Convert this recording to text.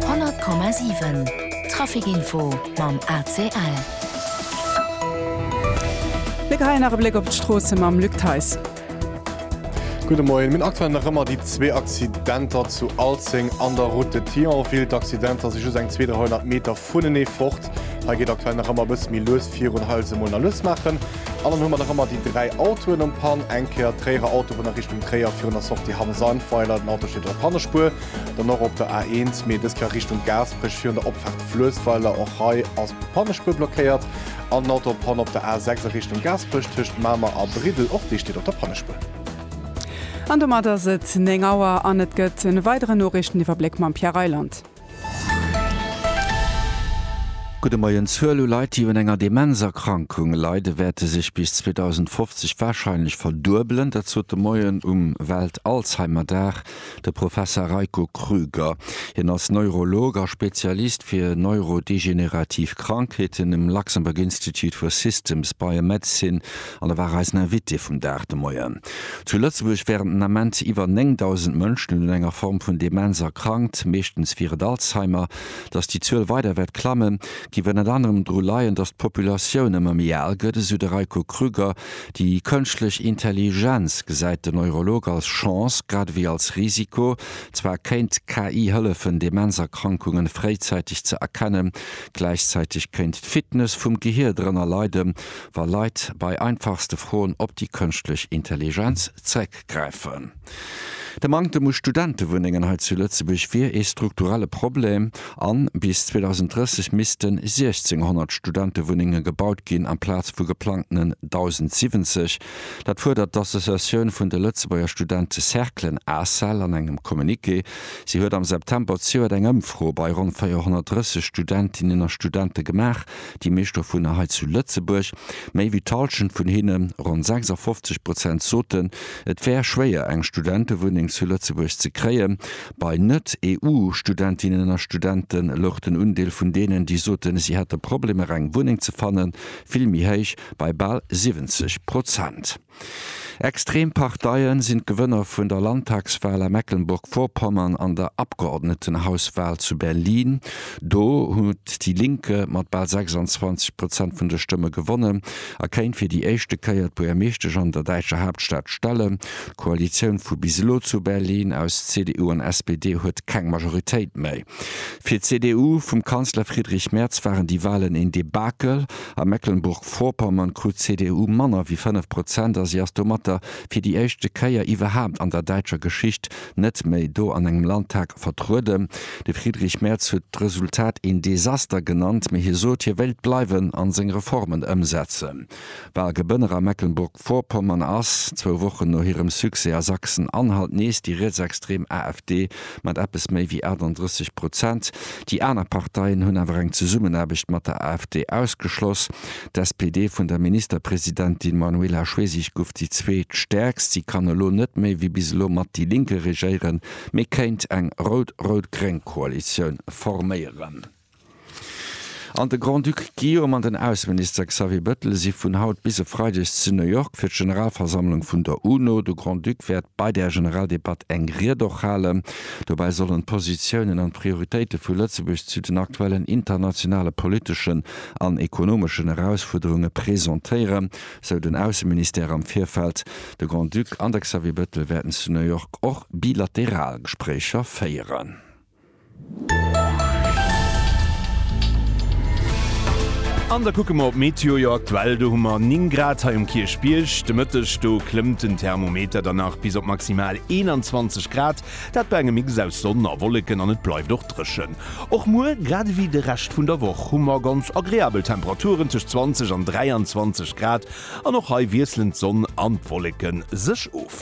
100,7 Trafic Info mam ACL. Mir geheien nach e Bléck op d'Stroosse mam Luc Theis. Gudde Moien. Mir hunn aktuell nach ëmmer déi zwee Accidenter zu Alzeng an der Route de Thionville. D'Accidenter si just eng 200, 300 Meter vunenee fort. Hei geet aktuell nach ëmmer e bësse méi lues virun. Hei huet se emol nach lues maachen. An dann hu mer nach ëmmer déi dräi Autoen um Pan, eng Kéier d'Tréierer Autobunn a Richtung Tréier virun der Sortie Hamm-Sandweiler, den Auto steet op der Pannespuer, dann och op der A1, mee dës Kéier Richtung Gaasperech virun der Opfaart Fluessweiler, och hei ass d'Pannespuer blockéiert, an den Auto op Panne op der A6 a Richtung Gaasperech tëscht Mamer a Briddel, och dee steet op der Pannespuer. An domat ass et 9 Auer an et gëtt e weideren Noriichteniwwerbléck mam Pierre Reyland. Gudde Moien. D'Zuel u Leit, déi un enger Demenzerkrankung leide wäerte sech bis 2050 warscheinlech verduebelen. Dat sot de Moien um Welt-Alzheimer-Dag de Professer Reiko Krüger. Hien ass Neurolog a Spezialist fir neurodegenerativ Krankheeten um Luxembourg Institute for Systems Biomedicine An da war eisen Invité vum Dag de Moien. Zu Lëtzebuerg wären den Ament iwwer 9.000 Mënschen un enger Form vun Demenz erkrankt, meeschtens wier et Alzheimer. Datt déi Zuel weider wäert klammen, géif ënnert anerem dru leien, datt d'Populatioun ëmmer méi al gëtt, esou de Reiko Krüger. Déi kënschtlech Intelligenz gesäit den Neurolog als Chance, grad ewéi als Risiko. Zwar kéint d'KI hëllefen, Demenzerkrankunge fréizäiteg ze erkennen, gläichzäiteg kéint d'Fitness vum Gehier drënner leiden. wa Leit bei einfachste Froen op déi kënschtlech Intelligenz zréckgräifen. De Manktem u Studentewunnengen hei zu Lëtzebuerg wier ee strukturelle Problem a bis 2030 missten 1.600 Studentewunnenge gebaut ginn amplaz vu geplangtenen 1.070. Dat fuerdert d'Associatioun vun de Lëtzebuerger Studentecerclen, Ascel, an engem Communiqué. Si huet am September zejoert eng Ëmfro bei ronn 430 Studentinnen a Studente gemaach, Déi meescht dovunner hei zu Lëtzebuerg. Méi wéi d'Halschent vun hinne, ronn 56 Prozent, soten, et wär schwéier, eng Studentewunneng zu Lëtzebuerg ze kréien. Bei Net-EU-Studentinnen a Studente louch den Undeel vun deenen, déi soten, si hätte Problemer, eng Wunneng ze fannen, vill méi héich, bei bal 70 Prozent. Extrem Parteien sinn d'Gewënner vun der Landtagswal a Mecklenburg-Vorpommern an der Abgeordnetenhauswal zu Berlin. Do huet déi Linke mat bal 26 Prozent vun de Stëmme gewonnen a kéint fir déi éischte Kéier d'Buergermeeschtesch an der däitscher Haaptstad stellen. D'Koalitioun vu bis elo zu Berlin aus CDU an SPD huet keng Majoritéit méi. Fir d'CDU vum Kanzler Friedrich Merz waren déi Walen een Debakel. A Mecklenburg-Vorpommern krut d'CDU manner wéi 5 Prozent a si ass domatter fir déi éischte Kéier iwwerhaapt an der däitscher Geschicht net méi do an engem Landtag vertrueden. De Friedrich Merz huet d'Resultat een Desaster genannt, mee hie sot, hie wéilt bleiwen a seng Reformen ëmsetzen. Walgebënner a Mecklenburg-Vorpommern ass, zwou Wochen no hirem Succès a Sachsen-Anhalt, nees déi rietsextrem AfD mat eppes méi wéi 38 Prozent. Déi aner Parteien hunn awer eng Zesummenaarbecht mat der AfD ausgeschloss. D'SPD vun der Ministerpresidentin Manuela Schwesig gouf déi zweet stäerkst. Si kann elo net méi wéi bis elo mat déi Linke regéieren, mee kéint eng rout-rout-gréng Koalitioun forméieren. An de Grand-Duc Guillaume an den Ausseminister Xavier Bettel si vun haut bis e Freideg zu New York fir d'Generalversammlung vun der UNO. De Grand-Duc wäert bei där Generaldebatt eng Ried och halen. Dobäi sollen d'Positiounen an d'Prioritéite vu Lëtzebuerg zu den aktuellen internationale politeschen an ekonomeschen Erausfuerderunge presentéieren, sou den Ausseministère am Virfeld. De Grand-Duc an de Xavier Bettel wäerten zu New York och bilateral Gespréicher féieren. An da kucke mer op d'Meteo. Jo, aktuell do hu mer 9 Grad hei um Kierchbierg. De Mëtteg do klëmmt den Thermometer dann nach bis op maximal 21 Grad, dat bei engem Mix aus Sonn a Wolleken, an et bleift och dréchen. Och muer, grad ewéi de Rescht vun der Woch, hu mer ganz agreabel Temperaturen tëscht 20 an 23 Grad, an och hei wiesselen d'Sonn an d'Wolleke sech of.